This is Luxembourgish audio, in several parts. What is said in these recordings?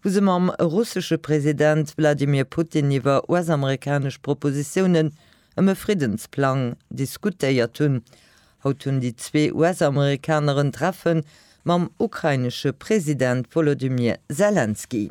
wou se mam russesche President Wladimir Putin iwwer US-amerikanesch Propositiounen ëm e Friddensplang diskutéiert hunn. Haut hunn déi zwee US-Amerikaner en Treffe mam ukrainesche President Wolodymyr Selenskyj.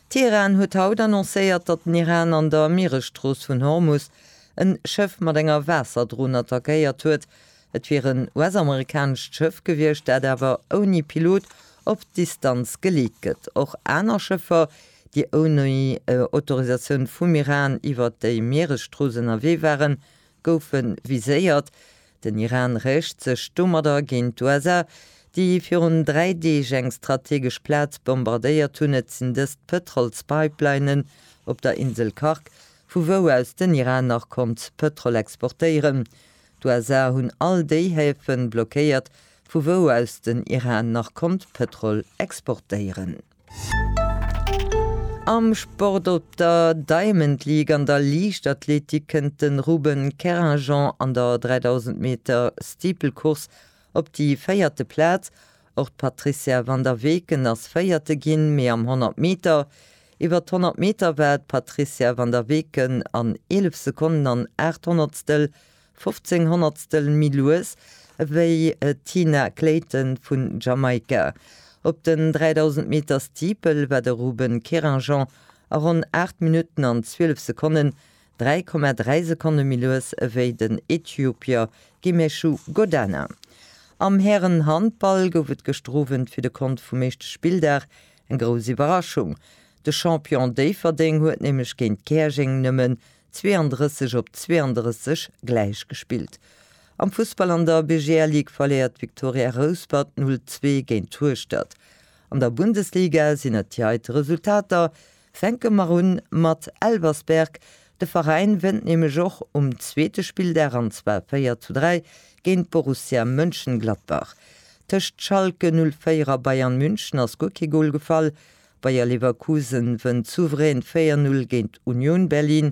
Teheran huet haut annoncéiert, datt den Iran an der Mieresstrooss vun Hormus en Schëff mat enger Waasserdron attackéiert huet, Et wier en US-amerikanescht Schëff gewiescht, dat awer ouni Pilot op Distanz geleet gëtt. Och aner Schëffer, déi ouni Autorisatioun vum Iran iwwert déi Mieresstrooss ënnerwee waren, goufe viséiert. Den Iran rächt sech domadder géint d'USA, déi virun dräi Deeg eng strategesch Plaz bombardéiert hunn. Et sinn dëst d'Pëtrolspipelinen op der Insel Khark, vu wou aus den Iran nach konnt Pëtrol exportéieren. D'USA hunn all déi Häfe blockéiert, vu wou aus den Iran nach konnt Pëtrol exportéieren. Am Sport, Op der Diamond League an der Liichtathletik kënnt de Ruben Kerrinjean an der 3000 Meter Steeple Course op déi véierte Plaz. Och d'Patrizia van der Weken ass Véierte ginn, mee am 100 Meter. Iwwer d'Honnert Meter war d'Patrizia van der Weken an 11 Sekonnen an aacht Honnertstel, 15 Honnertstel, méi lues ewéi d'Tina Clayton vun Jamaika. Op den 3000 Meter Steeple war de Ruben Querinjean a ronn aacht Minutten an zwielef Sekonnen 3,3 Sekonne méi lues ewéi den Äthiopier Gemeshu Godana. Am Hären-Handball gouf et gëschter Owend fir de Kont vum éischte Spilldag eng grouss Iwwerraschung. De Champion Déifferdeng huet nämlech géint Käerjeng nëmmen 32 op 32 gläich gespillt. Am Fussball an der BGL Ligue verléiert d'Viktoria Rouspert 0, 2 géint Hueschtert. An der Bundesliga sinn et déi heite Resultater, Fänke mer un mat Elversberg. De Veräin wënnt nämlech och um zweete Spilldag, an zwar 4 zu 3 géint Borussia Mönchengladbach. Tëscht Schalke 04 a Bayern München ass guer kee Gol gefall. Bayer Leverkusen wënnt souverän 4-0 géint Union Berlin.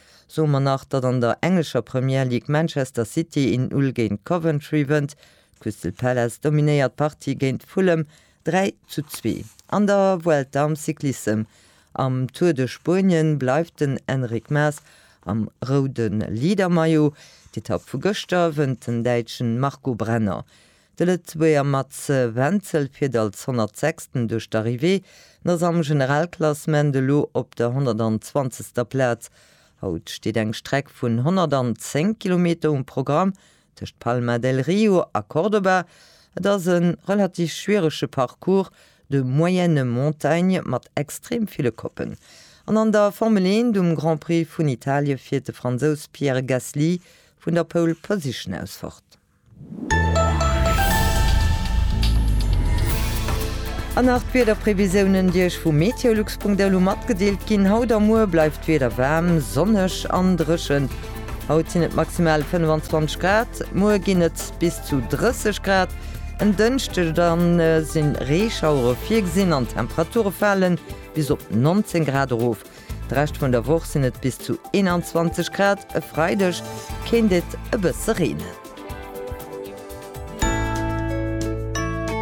Soe mer nach, datt an der englescher Premier League Manchester City een Null géint Coventry wënnt. Crystal Palace dominéiert d'Partie géint Fulham 3 zu 2. An der Vuelta am Cyclissem am Tour de Spuenien bleift den Enric Maes am roude Leadermaillot. D'Etapp vu gëschter wënnt den Däitschen Marco Brenner. De Lëtzebuerger Mats Wenzel fiert als 106. duerch d'Arrivée an ass am Generalklassement elo op der 120. Plaz. Haut steet eng Streck vun 110 Kilometer um Programm tëscht Palma del Rio a Córdoba. Et ass e relativ schwierege Parcours de moyenne montagne mat extrem ville Koppen. An an der Formel 1, um Grand Prix vun Italie fiert de Fransous Pierre Gasly vun der Pole Position aus fort. An nach d'Wiederprevisiounen, déi Iech vu meteolux.lu matgedeelt ginn. Haut a muer bleift d'Wieder waarm, sonneg an dréchen. Haut sinn et maximal 25 Grad, muer ginn et bis zu 30 Grad. En Dënschdeg da si Reeschauere virgesinn an d'Temperature fale bis op 19 Grad erof. De Rescht vun der Woch sinn et bis zu 21 Grad, e Freideg kéint et e bësse reenen.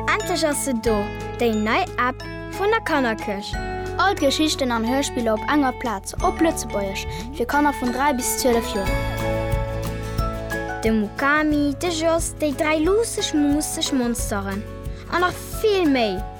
Endlech ass se do, déi nei App vun der Kannerkëscht! All d'Geschichten an Hörspiller op enger Plaz, op Lëtzebuergesch, fir Kanner vun 3 bis 12 Joer. De Mukami, de Jos, déi dräi luusseg, muusseg Monsteren a nach vill méi!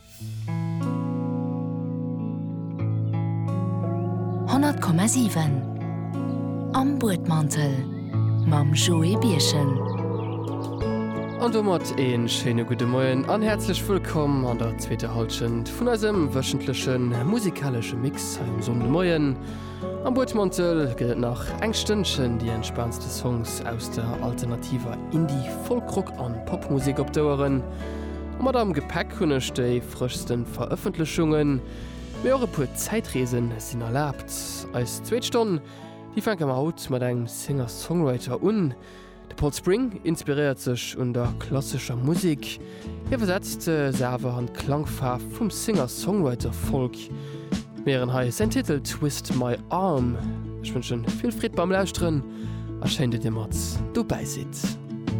Honnert Komma siwen Am Buedmantel mam Joé Birchen. An domat een schéine gudde Moien an häerzlech wëllkomm an der zweeter Halschent vun eisem wëchentlechen musikalesche Mix hei um Sonndemoien. Am Buedmantel gëtt et nach eng Stënnchen déi entspaantste Songs aus der alternativer Indie-, Folk-, Rock an Popmusek op d'Oueren. Mat am Gepäck hunn ech déi frëschsten Verëffentlechungen, mee och e puer Zäitreesen sinn erlaabt. Eis zweet Stonn, déi fänke mer haut mat engem Singer-Songwriter un. De Paul Spring inspiréiert sech un der klassescher Musek, iwwersetzt se awer an d'Klangfaarf vum Singer-Songwriter-Folk. Mir héieren hei säin Titel Twist My Arm. Ech wënschen vill Freed beim Lauschteren a schéin, datt dir mat dobäi sidd.